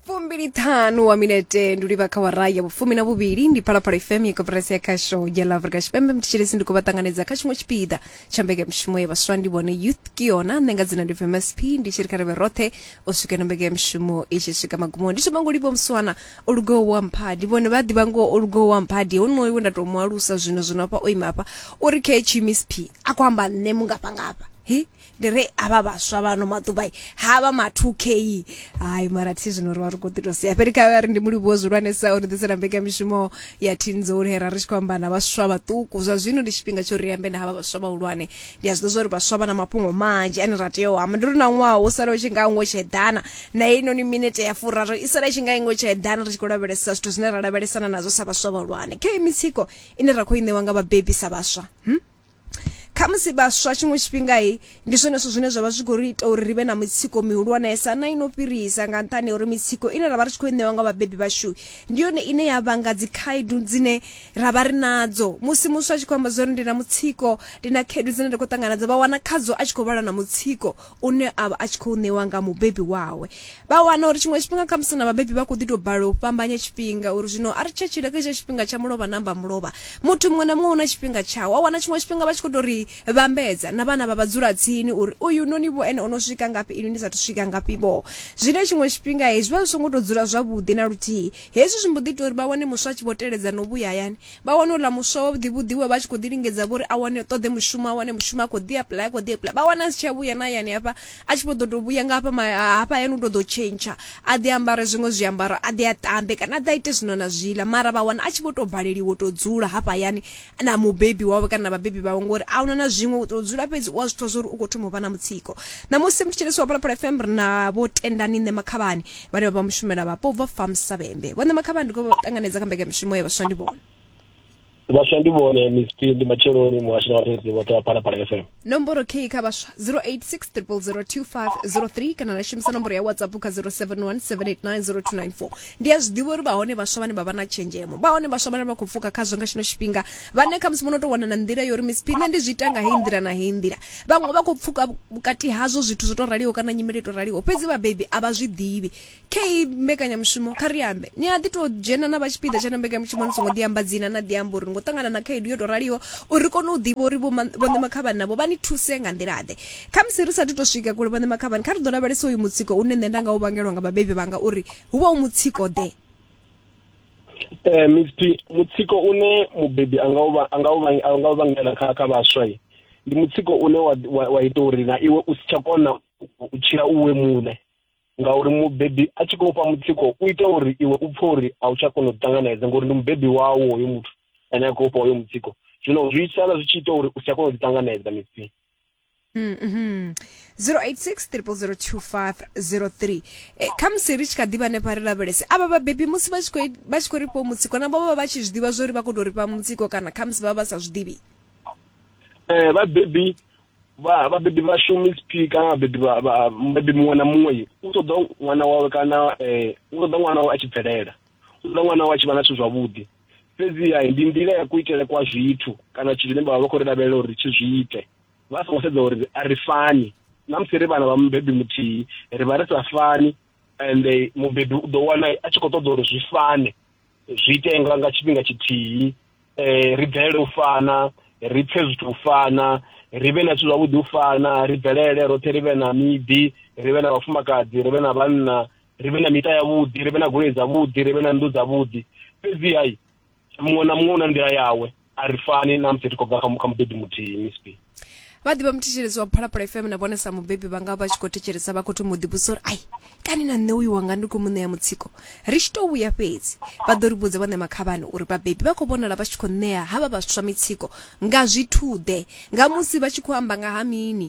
fumbili ṱhanu wa minete ndi livha kha wara ya vhufumi na vhuvhili ndi phalaphala fm ya koperasi ya khasho ya la afrika tshipembe mthetshelesi ndi khou vha ṱanganedza kha tshiṅwe tshipiḓa tsha mbekanyamushumo ya vhaswa ndi vhone youth kiona nṋe nga dzina ndi vmsp ndi tshi ri kha rivhe roṱhe u swika na mbekanyamushumo i tshi swika magumoni ndi thoma ngo livha muswana o lugaho wa mphadi vhone vha ḓivha ngo o lugaho wa mphadi honoyo we nda tou mu alusa zwino zwino hafha o ima hafha uri khe tshimsp a khou amba nṋe mungafhangafha he ndi ri havha vhaswa vhano maḓuvha i, ha vha ma 2k hayi mara thi zwino ri vha ri khou ḓi tou sia fheli kha vha ri ndi mulivhuwo zwihulwanesa o ni ḓisela mbekamishumo ya thinzoni hera ri tshi khou amba na vhaswa vhaṱuku zwa zwino ndi tshifhinga tsho ri ambe na havha vhaswa vhahulwane ndi a zwi ḓo zwa uri vhaswa vha na mafhungo manzhi ane ra tea u amba ndi ri na ṅwaha wo sala u tshi nga ngo tsheḓana na heinoni minete ya furaru i sala i tshi nga ingo tsheḓana ri tshi khou lavhelesa zwithu zwine ra lavhelesana nazwo sa vhaswa vhahulwane khe mitsiko ine ra khou i ṋewa nga vhabebi sa vhaswa hmm? khamusi vhaswa tshiṅwe tshifhingai ndi zwone zwithu zwine zwa vha zwi khou ri ita uri ri vhe na mitsiko mihulwanesa na ino fhirisa nga nṱhani uri mitsiko ine ra vha ri tshi khou i ṋewa nga vhabebi vhashu ndi yone ine ya vhanga dzikhaedu dzine ra vha ri nadzo musi muswa a tshi khou amba zwa uri ndi na mutsiko ndi na khaedu dzine nda khou ṱangana dza vha wana khadzo a tshi khou vhala na mutsiko une a vha a tshi khou ṋewa nga mubebi wawe vha wana uri tshiṅwe tshifhinga kha musi na vhabebi vha khou ḓi tou balelwa u fhambanya tshifhinga uri zwino a ri tsha tshila kha itsha tshifhinga tsha mulovha na mba mulovha muthu muṅwe na muṅwe u na tshifhinga tshawo wa wana tshiṅwe tshifhinga vha tshi khou tou ri vhambedza na vhana vha vha dzula tsini uri uyu noni vho ene o no swika ngafhi inwi ni sathu swika ngafhi vho zwine tshiṅwe tshifhinga hezwi vha zwi songo tou dzula zwavhuḓi na luthihi hezwi zwi mbo ḓi ita uri vha wane muswa a tshi vho teledza no vhuya hayani vha wana uḽa muswa wa vhuḓivhuḓi we vha tshi khou ḓi lingedza vhori a wane ṱoḓe mushumo a wane mushumo a khou ḓi apply a khou ḓi apply vha wana a si tsha vhuya na hayani hafha a tshi vho ḓo tou vhuya nga hafha hafha hayani u tou ḓo tshentsha a ḓi ambare zwiṅwe zwiambaro a ḓi a ṱambe kana a ḓi a ite zwino na zwiḽa mara vha wana a tshi vho tou baleliwa u tou dzula hafha hayani na mubebi wawe kana na vhabebi vhawe ngori a huna na zwiṅwe u tou dzula fhedzi u a zwi pfha zwa uri u khou thoma u vha na mutsiko ṋamusi mthetshelesi wa phalaphala fm ri na vho tendani nṋe makhavhani vhane vha vha mushumela vhapo ubva farm savhembe vhone makhavha ndi khou ṱanganedza kha mbekanyamushumo ya vhaswa ndi vhone vhaswa ndi vhone msp ndi matsheloni muhashi na vhareedzi vhoṱhe vha phalaphala fm nomboro k kha vhaswa 0860002503 kana na shumisa nomboro ya whatsapp kha 0717890294 ndi a zwiḓivha uri vhahone vhaswa vhane vha vha na tshenzhemo vhahone vhaswa vhane vha khou pfuka khazwo nga tshino tshifhinga vhane khamusi vho no tou wana na nḓila yo uri msp nṋe ndi zwi ita nga heyi nḓila na heyi nḓila vhaṅwe vha khou pfuka vhukati hazwo zwithu zwo to raliho kana nyimele to raliho fhedzi vhabebi a vha zwi ḓivhi kha iyi mbekanyamushumo kha ri ambe ni a ḓi tou dzhena na vha tshipiḓa tsha na mbekanyamushumo ni songo ḓiamba dzina na ḓiamba uri ngo ṱangana na khaedu yo to raliho uri kone u ḓivha uri vhoṋe makhavhani navho vha ni thuse nga nḓilaḓe kha musi ri sathu to swika kule vhoṋe makhavhani kha ri ḓo lavhelesa uyu mutsiko une nṋe nda nga u vhangelwa nga vhabebi vhanga uri hu vha u mutsiko ḓe eh misti mutsiko une mubebi anga uba anga uba anga uba ngela kha kha baswa yi ndi mutsiko une wa wa, wa ita uri na iwe u si tsha kona u tshila uwe muṋe ngauri mubebi a tshi khou fha mutsiko u ita uri iwe u pfhe uri a u tsha kona u ṱanganedza ngori ndi mubebi wawo hoyo muthu ane a khou fha hoyo mutsiko zwino zwi sala zwi tshi ita uri u si tsha kona u ṱanganedza misti Mm, mhm. 0860002503 eh, khamusi ri tshi kha ḓivha hanefha ri lavhelese avha vhabebi musi vha tshi khou i- vha tshi khou rifhiwa mutsiko na vhovha vha tshi zwi ḓivha zwo ri vha khou tou rifha mutsiko kana khamusi vha vha vha sa zwi ḓivhi eh vhabebi vha vhabebi vha shumi sp kana vhabebi vha- vha- mubebi muṅwe na muṅwe u ṱoḓa ṅwana wawe kana eh u ṱoḓa ṅwana wawe a tshi bvelela u ṱoḓa ṅwana wawe a tshi vha na zwithu zwavhuḓi fhedziha ndi nḓila ya kuitele kwa zwithu kana zwithu zwine vha vha vha khou ri lavhelela uri tshi zwi ite vha songo sedza uri a ri fani na musi ri vhana vha mubebi muthihi ri vha ri sa fani and mubebi u ḓo wana a tshi khou ṱoḓa uri zwi fane zwi ite nga nga tshifhinga tshithihi um ri bvelele u fana ri pfhe zwithu u fana ri vhe na zwithu zwavhuḓi u fana ri bvelele roṱhe ri vhe na miḓi ri vhe na vhafumakadzi ri vhe na vhanna ri vhe na miṱa yavhuḓi ri vhe na goloi dzavhuḓi ri vhe na nnḓu dzavhuḓi fhedzi hai muṅwe na muṅwe u na nḓila yawe a ri fani na musi ri khou bva kha mubebi muthihi misp vha ḓivha muthetshelezi wa phalaphala fm na vhone sa mubebi vha nga vha tshi khou thetshelesa vha khou thoma u ḓivhusa uri ai kani na nṋe uyu wanga ndi khou mu ṋea mutsiko ri tshi tou vhuya fhedzi vha ḓo ri vhudza vhaṋe makhavhani uri vhabebi vha khou vhonala vha tshi khou ṋea havha vhaswa mitsiko nga zwithuḓe nga musi vha tshi khou amba nga ha mini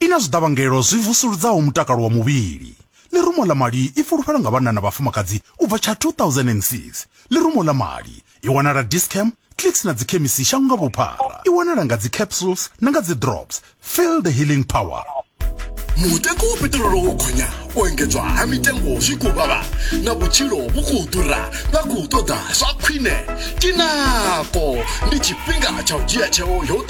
I na zwiḓavhangelo zwi vusuludzaho mutakalo wa muvhili. Ḽirumo ḽa mali i fulufhelo nga vhanna na vhafumakadzi u bva tsha 2006. Ḽirumo ḽa mali i wanala Dis-Chem, Clicks na dzikhemisi shango nga vhuphara. I wanala nga dzi capsules na nga dzi drops. Feel the healing power. Mutengo wa peṱirolo wo gonya, u engedzwa ha mitengo zwi khou vhavha na vhutshilo vhu khou ḓura vha khou ṱoḓa zwa khwine. Tinako ndi tshifhinga tsha u dzhia tsheo yo